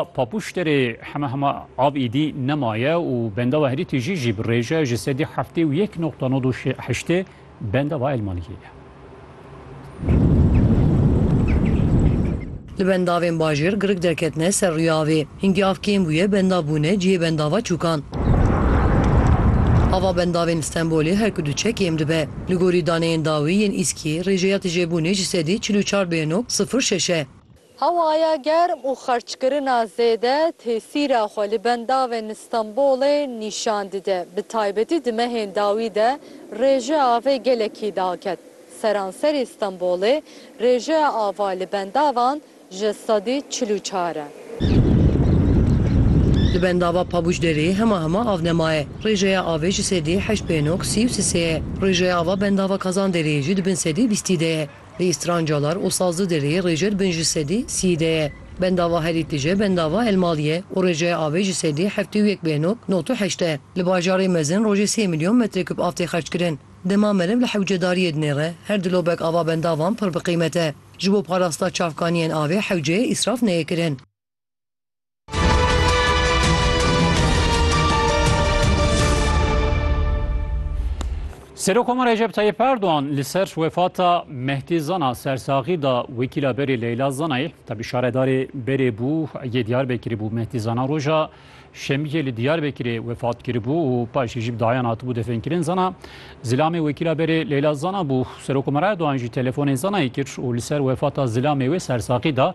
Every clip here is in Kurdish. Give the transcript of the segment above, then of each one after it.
Papûş derê heme hema av îdî nemaye û benda we herî tijî jî bi rêj e, ji sedî heftê û yek noqta nod û heştê benda we elmaniyê ye. Li bendavên bajêr girig derketine ser rûyê avê. Hingî av kêm bûye bendav bûne cihê bendava çûkan. Ava bendavên Stenbolê her ku diçe kêm dibe. Li gorî daneyên dawî yên Îskiyê rêjeya tijebûnê ji sedî çil û çar bêyeno sifir şeş e. Hewaya germ û xerçkirina zêde tesîra xwe li bendavên li Stenbolê nîşan dide. Bi taybetî di mehên dawî de rêjeya avê gelekî daket. Seranserî Stenbolê rêjeya ava li bendavan ji sedî çil û çar e. Li bendava Pabuçderê hema hema av nemaye. Rêjeya avê ji sedî heşt pênok sî û sisê ye. Rêjeya ava bendava Kazanderê jî di bin sedî bîstî de ye. Li Strancalar û Sazlıderê rêcer bin ji sedî sî de ye. Bendava herî tije bendava Elmal ye û rêjeya avê ji sedî heftê û yek bêhnok not û heşt e. Li bajarê mezin rojê sê milyon metrekûb av tê xerckirin. Dema meriv li hewcedariyê dinêre her dilobek ava bendavan pir bi qîmet e. Ji bo parasta çavkaniyên avê hewceyê îsraf neyê kirin. Serokoma Recep Tayyip Erdoğan li ser wefata Mehdi Zana sersaxî da wekîla berê Leyla Zanayê tabî şaredarê berê bû yê Diyarbekirê bû Mehdi Zana roja şemiyê li Diyarbekirê wefat kiribû û paşê jî bi dayan hatibû defenkirin Zana zilamê wekîla berê Leyla Zana bû Serokoma Erdoğan jî telefonê Zanayê kir û li ser wefata zilamê wê sersaxî da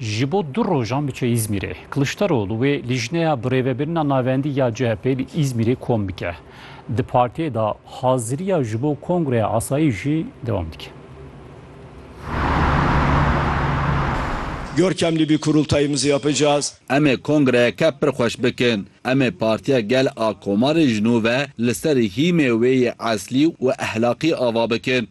Ji bo du rojan biçe Îzmîrê. Kiliçdaroglu wê Lîjneya Birêvebirina Navendî ya CHP'ê li Îzmîrê kom bike. Di partiyê de haziriya ji bo kongreya asayî jî dewam dike. Görkem li vî kurultayî miziya picaz. Em ê kongreyeke pir xweş bikin. Em ê Partiya Gel a Komarê ji nû ve li ser hîmê wê yê eslî û ehlaqî ava bikin.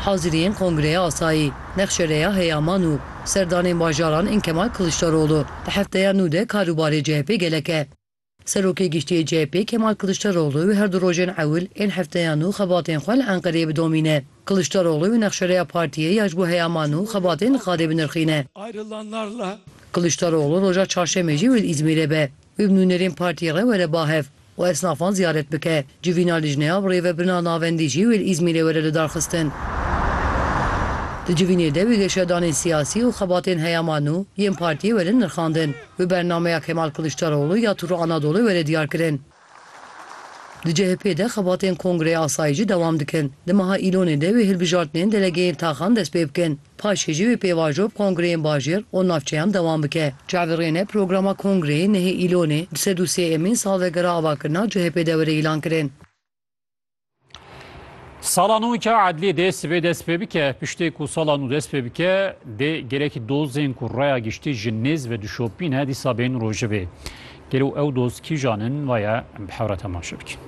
Haziriyên Kongreya Asayî, Nexşereya Heyaman û Serdanên Bajaran ên Kemal Kiliçdaroglu di hefteya nû de kar û barê CHP'ê gelek e. Serokê Giştî yê CHP'ê Kemal Kiliçdaroglu wê her du rojên ewil ên hefteya nû xebatên xwe li Enqereyê bidomîne. Kiliçdaroglu wê nexşereya partiyê ya ji bo heyaman û xebatên li Xadê binirxîne. Kiliçdaroglu roja çarşemê jî wê li Îzmîrê be. Wê bi nûnerên partiyê re were bahev. Û esnafan ziyaret bike. Civîna lijneya bi rêvebirina navendî jî wê li Îzmîrê were lidarxistin. Di civînê de wê geşyadanên siyasî û xebatên heyama nû yên partiyê werin nirxandin. Wê bernameya Kemal Kiliçdaroglu ya Tûrra Anadolu were diyarkirin. Di CHP'ê de xebatên Kongreya Asayîşî dewam dikin. Di meha Îlonê de wê hilbijartinên delegeyên taxan dest pê bikin. Paşê jî wê pêvajo bi kongreyên bajêr û navçeyan dewam bike. Çavê rêne programa kongreyê nehê Îlonê di sed û sê emîn salvegera avakirina CHPê de were îlan kirin. Sala nû ke edlîyê dê sibê dest pê bike. Piştê ku sala nû dest pê bike dê gelek dozên ku raya giştî ji nêz ve dişopîn e dîsa bên rojevê. Gelo ew doz kîjan in vaye em bi hev re temaşe bikin.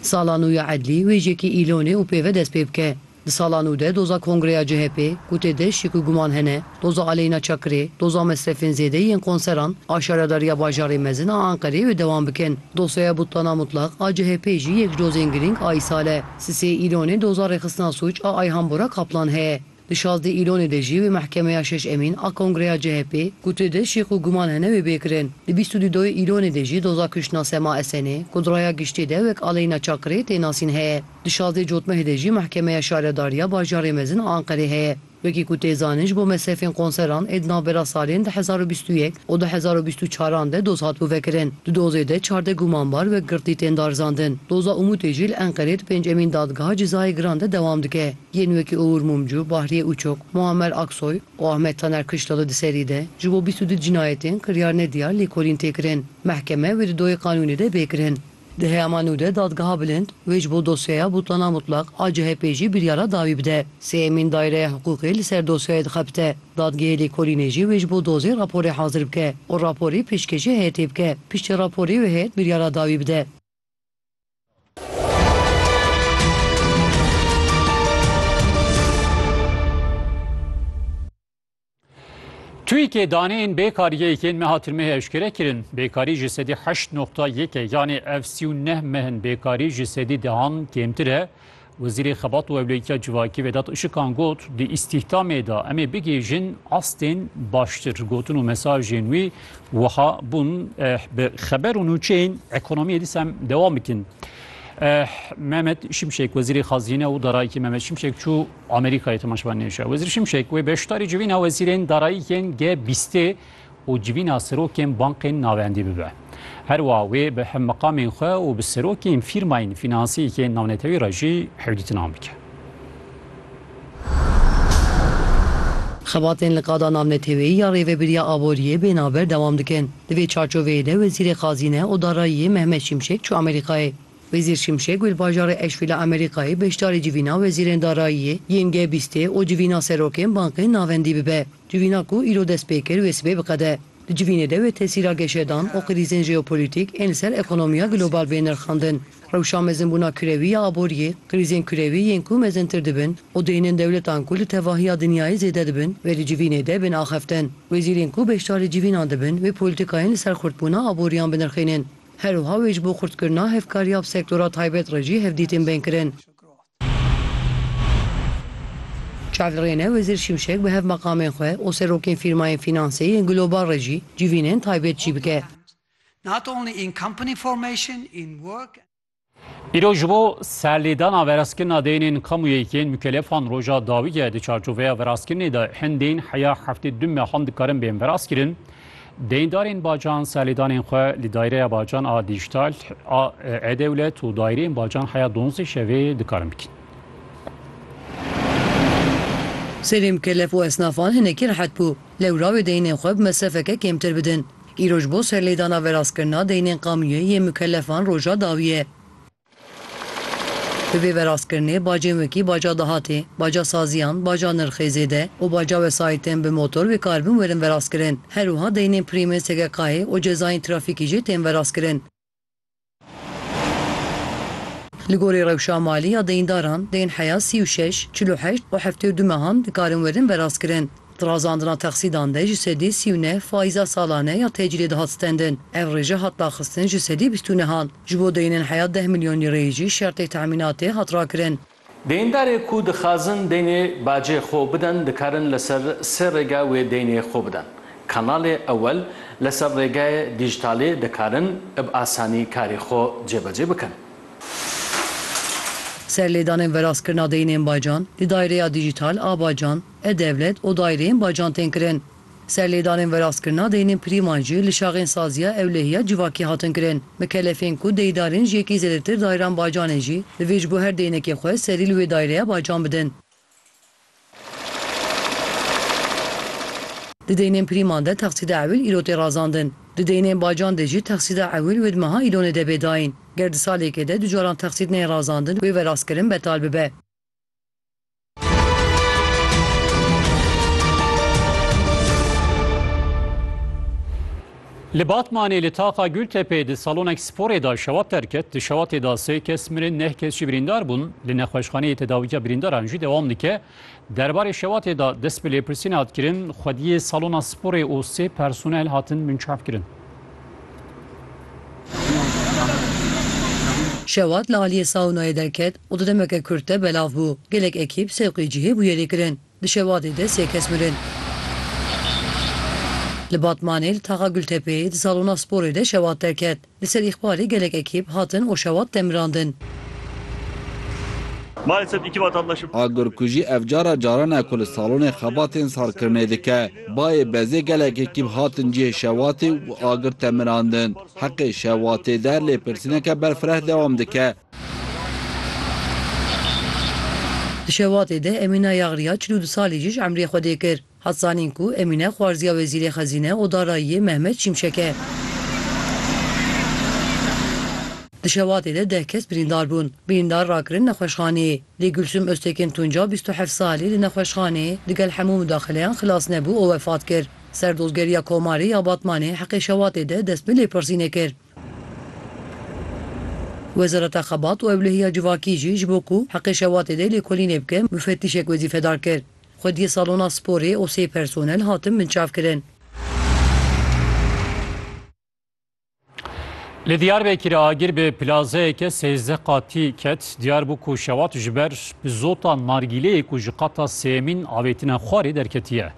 Sala nû ya Edlî wêjekî îlonê û pêve dest pê bike. Di sala nû de doza kongreya CHP'ê ku tê de şik û guman hene, doza aleyna çakirê, doza mesrefên zêde yên konseran a şaredariya bajarê mezin a Enqerê wê dewam bikin. Dosyaya Butana Mutlak a CHP'ê jî yek ji dozên girîng a îsal e. Sisê îlonê doza rêxistina sûc a Ayhan Bora Kaplan heye. Di şazdeh Îlonê de jî wê mehkemeya şeş emîn a kongreya CHP'ê ku tu de şêx û guman hene wê bê kirin. Di bîst û dudoyê Îlonê de jî doza kuştina Sema Esenê ku di raya giştî de wek Aleyna Çakirê tê nasîn heye. Di şazdeh Cotmehê de jî mehkemeya şaredariya bajarê mezin a Enqerê heye. Wekî ku tê zanin ji bo mesrefên konseran ê di navbera salên du hezar û bîst û yek û du hezar û bîst û çar an de doz hatibû vekirin. Di dozê de çardeh gumanbar wek girtî tên darizandin. Doza Umutê jî li Enqerê di pênc emîn dadgeha cezayê giran de dewam dike. Yên wekî Uğur Mumcu, Bahriye Uçok, Muammer Aksoy û Ahmet Taner Kışlalı di serî de ji bo bîst û du cinayetên kiryar ne diyar lêkolîn tê kirin. Mehkeme wê di doyê qanûnê de bê kirin. Di heyama nû de Dadgeha Bilind wê ji bo dosyeya Butlana Mutlak a CHP'ê jî biryara dawî bide. Sêyemîn Dayreya Hiqûqê li ser dosyayê dixebite. Dadgehê Lêkolînê jî wê ji bo dozê raporê hazir bike û raporê pêşkêşê heyetê bike. Piştî raporê wê heyet biryara dawî bide. Twîkê daneyên bêkariyê yên meha tirmehê eşkere kirin. Bêkarî ji sedî heşt noxta yek e yanê ev sî û neh mehin bêkarî ji sedî dehan kêmtir e. Wezîrê Xebat û Ewleyîtiya Civakî Vedat Işikan got, Di îstîhdamê de em ê bigihîjin astên baştir. Gotin û mesajên wî wiha bûn, Bi xeber û nûçeyên ekonomiyê dîsa em dewam bikin. Mehmet Şimşek Wezîrê Xazîne û Darayîkê Mehmet Şimşek çû Amerîkayê temaşevanên nêşa. Wezîr Şimşek wê beşdarî civîna wezîrên darayîkên G-bîstê û civîna serokên bankên navendî bibe. Her wiha wê bi hevmeqamên xwe û bi serokên fîrmayên fînansiyekê navnetewî re jî hevdîtinan bike. Xebatên li qada navneteweyî ya Rêvebiriya Aboriyê bê navber dewam dikin. Di vê çarçoveyê de Wezîrê Xazîne û Darayiyê Mehmet Şimşek çû Amerîkayê. Wezîr Şimşek li bajarê Eşfî li Amerîkayê beşdarî civîna wezîrên darayiyê yên G bîstê û civîna serokên bankên navendî bibe. Civîna ku îro dest pê kir wê sibê biqede. Di civînê de wê tesîra geşedan û krîzên jeopolîtîk ên li ser ekonomiya global bên nirxandin. Rewşa mezinbûna kurewî ya aboriyê, krîzên kurewî yên ku mezintir dibin û dihênin dewletan ku li tevahiya dinyayê zêde dibin wê di civînê de bên axeftin. Wezîrên ku beşdarî civînan dibin wê polîtîkayên li ser xurtbûna aboriyan binirxînin. Her wiha wê ji bo xurtkirina hevkariya bi sektora taybet re jî hevdîtin bên kirin. Çavirêne Wezîr Şimşek bi hevmeqamên xwe û serokên fîrmayên fînansê yên global re jî civînên taybet çî bike. Îro ji bo serlêdana verazkirina deynên kamuyê yên mukelefan roja dawî ye. Di çarçoveya verazkirinê de hin deyn heya heftê du mehan dikarin bên verazkirin. Deyndarên bacan serlêdanên xwe li Dayreya Bacan a Dîjtal a E-Dewlet û Daireyên Bacan heya donzdeh şevê dikarin bikin. Serê mikelef û esnafan hinekî rehet bû. Lewra wê deynên xwe bi mesrefeke kêmtir bidin. Îroj bo serlêdana veraskirina deynên qamûyê yê mikelefan roja dawî ye. Bi vê verastkirinê bacên wekî baca dahatê, baca saziyan, baca nirxê zêde û baca wesayîtên bi motor wê kar bin werin verastkirin. Her wiha deynên pirîmên SGK'ê û cezayên trafîkî jî tên verastkirin. Li gorî rewşa malî ya deyîndaran, deyn heya sî û şeş, çil û heşt û heftê û du mehan dikarin werin verastkirin. Di razandina texsîdan de ji sedî sî û neh faîza salane ya tecîlê dihat stendin. Ev rêje hat daxistin ji sedî bîst û nehan. Ji bo deynên heya deh milyon lîreyê jî şertê temînatê hat rakirin. Deyndarê ku dixazin deynê bacê xwe bidin dikarin li ser sê rêge wê deynê xwe bidin. Kanalê ewel, li ser rêgeyê dîjîtalê dikarin bi asanî karê xwe cêbecê bikin. Serlêdanên veraskirina deynên bacan, di dayreya dîjîtal a bacan, E-Dewlet û daîreyên bacan tên kirin. Serlêdanên veraskirina deynên prîman jî li şaxên Saziya Ewlehiya Civakî hatin kirin. Mikelefên ku deydarên ji yekî zêdetir daîran bacanê jî divê ji bo her deynekê xwe serî li wê daîreya bacan bidin. Di deynên prîman de texsîda ewil îro tê razandin. Di deynên bacan de jî texsîda ewil wê di meha Îlonê de bê dayîn. Ger di salêkê de du caran texsîd neyê razandin wê verastkirin betal bibe. Li Batmanê li taxa Gultepê di salonek sporê da şewat derket. Di şewatê da sê kes mirin neh kes jî birîndar bûn. Li nexweşxaneyê tedawîya birîndaran jî dewam dike. Derbarê şewatê da dest bi lêpirsînê hat kirin, xwediyê salona sporê û sê personel hatin binçavkirin. Şewat li aliyê saunayê derket û di demeke kurt de belav bû. Gelek ekîp sewqî cihê bûye lêkirin. Di Şewatê de sê kes mirin. Li Batmanê li taxa Gultepeyê di salona sporê de Şewat derket. Li ser îxbalê gelek ekîp hatin û Şewat demirandin. Agirkujî ev cara caran e ku li salonê xebatên salkirinê dike. Bayê bezê gelekê kîm hatin cihê şewatê û bi agir temirandin. Heqê şewatê der lêpirsîneke berfireh dewam dike. Di şewatê de Emîna Yagriya çil û du salî jî ji emrê xwe dê kir. Hat zanîn ku Emîne xwarziya Wezîrê Xezîne û Darayiyê Mehmet Şimşek e. Di şewatê de deh kes birîndar bûn. Birîndar rakirin nexweşxaneyê. Lê Gulsum Oztekin Tunca bîst û heft salî li nexweşxanê digel hemû mudaxileyan xilas nebû û wefat kir. Serdozgeriya Komarê ya Batmanê heqê şewatê de dest bi lêpirsînê kir. Wezareta Xebat û Ewlehiya Civakî jî ji bo ku heqê şewatê de lêkolînê bike mufetîşek wezîfedar kir. Xwediyê salona sporê û sê personel hatin binçavkirin. Li Diyarbekirê agir bi plazeyeke sêzdeh qatî ket. Diyar bû ku şewat ji ber bi zota nargîleyê ku ji qata sêyemîn avêtine xwarê derketiye.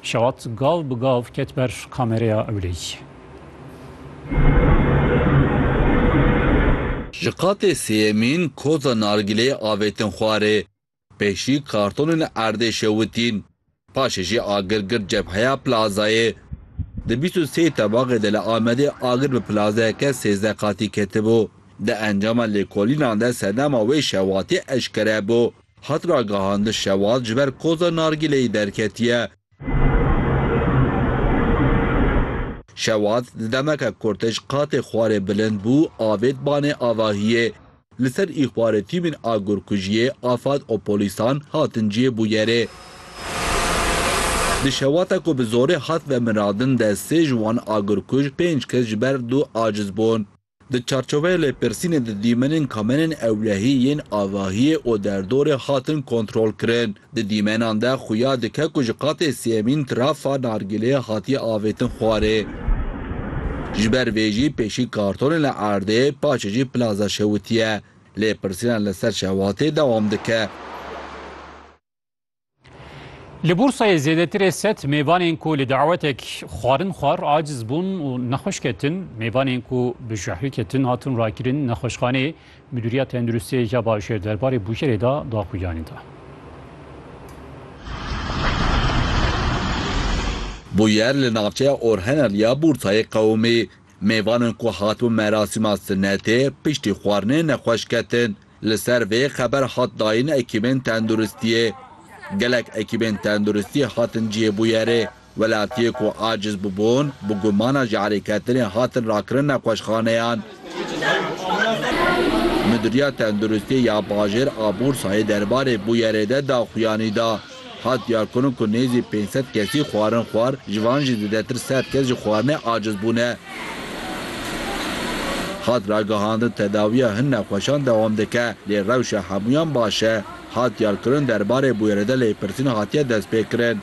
Şewat gav bi gav ket ber kamereya ewleyî. Ji qatê sêyemîn koza nargîleyê avêtin xwarê. Pêşî kartonên erdê şewitîn. Paşê jî agir girt cebheya plazayê. Di bîst û sê tebaxê de li Amedê agir bi plazayeke sêzdeh qatî ketibû. Di encama lêkolînan de sedema wê şewatê eşkere bû. Hat ragihandin şewat ji ber koza nargîleyê derketiye Şewat di demeke ku tij qatê xwarê bilind bû avêt banê avahiyê. Li ser îxbarê tîmên agurkujiyê afad û polîsan hatin cihê bûyerê. Di şewata ku bi zorê hat vemiradin de sê ji wan agurkuj pênc kes ji ber dû aciz bûn. Di çarçoveya lêpirsînê di dîmenên kamenên ewlehî yên avahiyê û derdorê hatin kontrolkirin. Di dîmenan de xuya dike ku ji qatê sêyemîn trafa nargîleyê hatiye avêtin xwarê. Ji ber vê jî pêşî kartonê li erdê, paşê jî plaza şewitiye. Lêpirsînan li ser şewatê dewam dike. Li Bursayê zêdetirê sed mêvanên ku li dawetek xwarin xwar aciz bûn û nexweş ketin, mêvanên ku bi jehrî ketin hatin rakirin nexweşxaneyê. Midûriya Tenduristiyê ya Bajêr derbarê bûyerê de daxuyanî da. Bûyer li navçeya Orhenel ya Bursayê qewimî. Mêvanên ku hatibûn merasîma sinetê piştî xwarinê nexweş ketin. Li ser vê xeber hat dayîn ekîbên tenduristiyê. Gelek ekîbên tenduristiyê hatin cihê bûyerê. Welatiyê ku aciz bûbûn, bi gumana jehrêketinê hatin rakirin nexweşxaneyan. Midûriya Tenduristiyê ya Bajêr a Bûrsayê derbarê bûyerê de daxuyanî da. Hat diyarkirin ku nêzî pênc sed kesî xwarin xwar, ji van jî zêdetir sed kes ji xwarinê aciz bûne. Hat ragihandin tedawiya hin nexweşan dewam dike, lê rewşa hemûyan baş e. Hat diyarkirin derbarê bûyerê de lêpirsîn hatiye destpêkirin.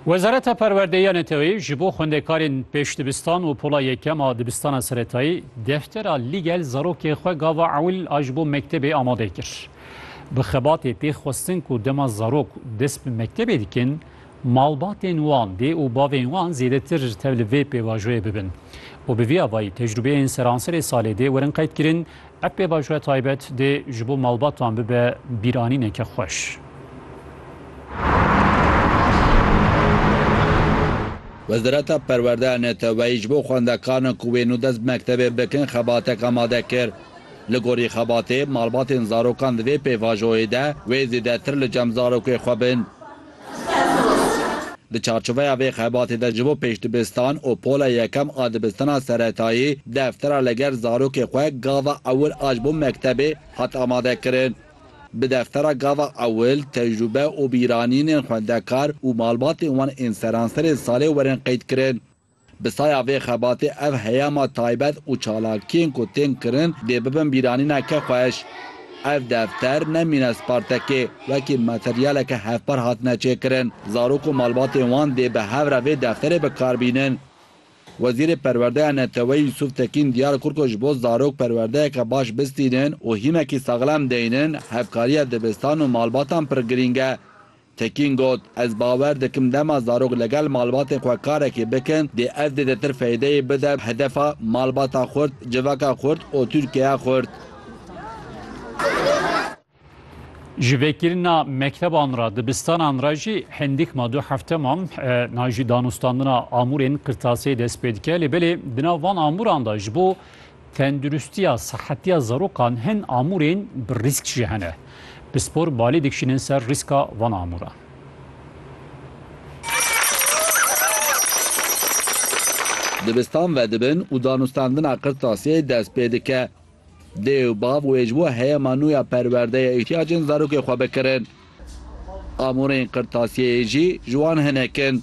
Wezareta Perwerdeyê ya Neteweyî ji bo xwendekarên pêş dibistan û pola yekem a dibistana seretayî deftera Lîgel zarokê xwe gava ewil a ji bo mektebê amade kir. Bi xebatê tê xwestin ku dema zarok dest bi mektebê dikin, malbatên wan, dê û bavên wan zêdetir tev li vê pêvajoyê bibin û bi vî avayî tecrûbeyên seranserê salê dê werin qeydkirin Ev pêvajoya taybet dê ji bo malbatan bibe bîranîneke xweş. Wezareta Perwerdeya Neteweyî ji bo xwendekaran ku wê nû dest bi mektebê bikin xebatek amade kir. Li gorî xebatê, malbatên zarokan di vê pêvajoyê de wê zêdetir li cem zarokê xwe bin. Di çarçoveya vê xebatê de ji bo pêş dibistan û pola yekem a dibistana seretayî deftera li gel zarokê xwe Gava Ewil a ji bo mektebê hat amadekirin. Bi deftera Gava Ewil tecrûbe û bîranînên xwendekar û malbatên wan ên seranserê salê werin qeydkirin. Bi saya vê xebatê ev heyama taybet û çalakiyên ku tên kirin dê bibin bîranîna kexweş. Ev defter ne mînes partekê, wekî materyaleke hevpar hatine çêkirin. Zarok û malbatên wan dê bi hev re vê defterê bi kar bînin. Wezîrê Perwerdeya Neteweyî Yusuf Tekîn diyar kir ku ji bo zarok perwerdeyeke baş bistînin û hîmekî saxlem deynin, hevkariya dibistan û malbatan pir girîng e. Tekîn got, Ez bawer dikim dema zarok li gel malbatên xwe karekê bikin dê ev zêdetir feydeyê bide hedefa malbata xurt, civaka xurt û Tirkiyeya xurt. Ji vekirina mekteban re, dibistanan re jî hindik ma du hefte man na jî danûstandina amûrên qirtasiyê dest pê dike lê belê di nav van amûran de ji bo Tenduristiya, sihetiya zarokan hin amûrên bi rîsk jî hene. Bi spor balê dikişînin ser rîska van amûran. Dibistan vedibin û danûstandina qirtasiyê dest pê dike. Dê û bav wê ji bo heyema nû ya perwerdeyê îhtiyacên zarokê xwe bikirin. Amûrên qirtasiyeyê jî ji wan hinek in.